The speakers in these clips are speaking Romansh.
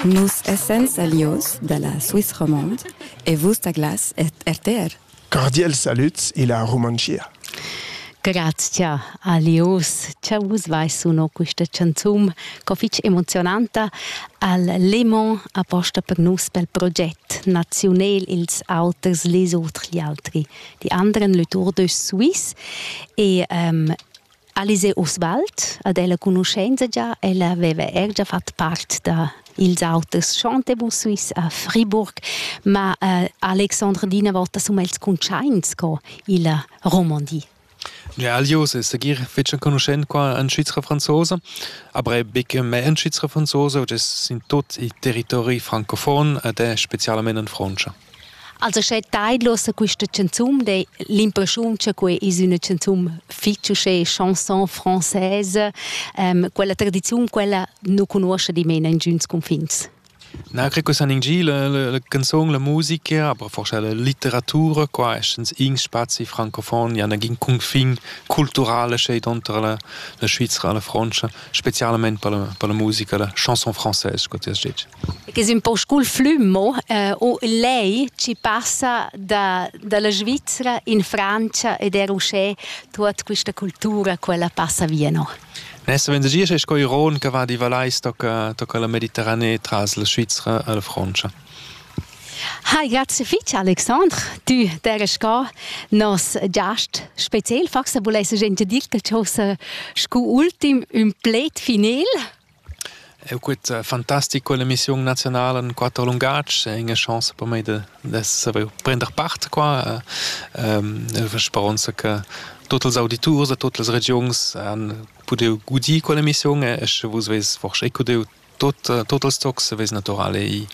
Nus essan salius dalla Swiss Romande e vus da Glas ed RTR. Cordials salüds illa Rumantschia. Grazcha a Lius cha vus vais suno quista chanzun co fich emozionanta al Lemon aposta per nus pel proget naziunel Ils auters les autres gli altri. Die anderen Letour de Suisse e um, Alice Oswald, ad ella conoscenza già, ella aveva er già fatto parte da ils auters Chantebus Suisse a Fribourg, ma uh, Alexandre Dina vota sum els cuntschaints co illa Romandie. Realius è segir fetg enconuschent qua en Svizra franzosa, aber er betg mez en Svizra franzosa, ed es in tut il territori francofon ed è specialmain en Frontscha. Also sche taidlosa quista chanzun, dai l'impreschiun cha que es üna chanzun fich uschè chanson française, quella tradiziun quella nu cugnuoscha dimena ingüns cunfins. Na cre che san ingir la, la, la canzun, la musica, aber forse la litteratura, qua essens in spazi francofon, ja nagin cunfin culturale schet unter la, la Svizzera, la Francia, specialmente per la, per la musica, la chanson française, che ti has detto. Che è un po' scul flummo, eh, o lei ci passa da, dalla Svizzera in Francia ed è uscè tutta questa cultura, quella passa via, no? Nessa vendegia sei sco iron che va di Valais tocca, tocca la Mediterranée tras la Svizra alla Francia. Hi, grazie fitg Alexandre. Du deres ga nos giast spezial forse volesse gente dir che cosa scu ultim un plate final. Eu quet fantastic quell'emissiun naziunala in quatter lungatgs e ina chance per mei da saver prender part qua. Üna speronza che tuot ils auditurs da tuot las regiuns han pudeu gudir quell'emissiun e sche vus vess forsa ecu deu tuot, tuot ils tocs vess natürale i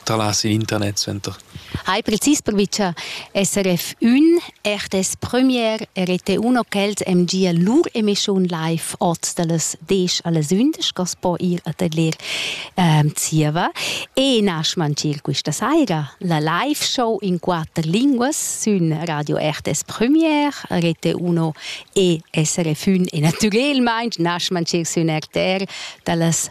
tralas in internet suenter. Hai precis provi cha SRF ün eir dess premier e rete uno ch'els em gia lur emission live oz da las 10 alles 11 cos po ir a tadler ehm zieva e nasch mancir quista saira la live show in quatter linguas sün Radio RTS Premier, rete uno e SRF ün e natürelmaing nasch mancir sün RTR da las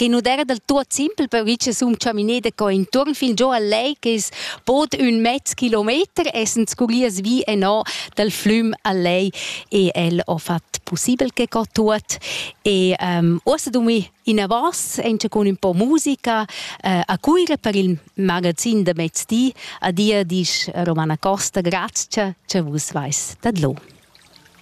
che non era del tuot simpel per che sum chaminé da co intuorn fin giò al lei che es bod ün mezz kilometer essend scuglias vi e no dal flüm al lei e el ho fat possibel che co tuot e um, uossa dumi in avance anche con un po' musica eh, a Cuira per il magazin da mezzdi a dir disch Romana Costa grazie che vus vais tadlo.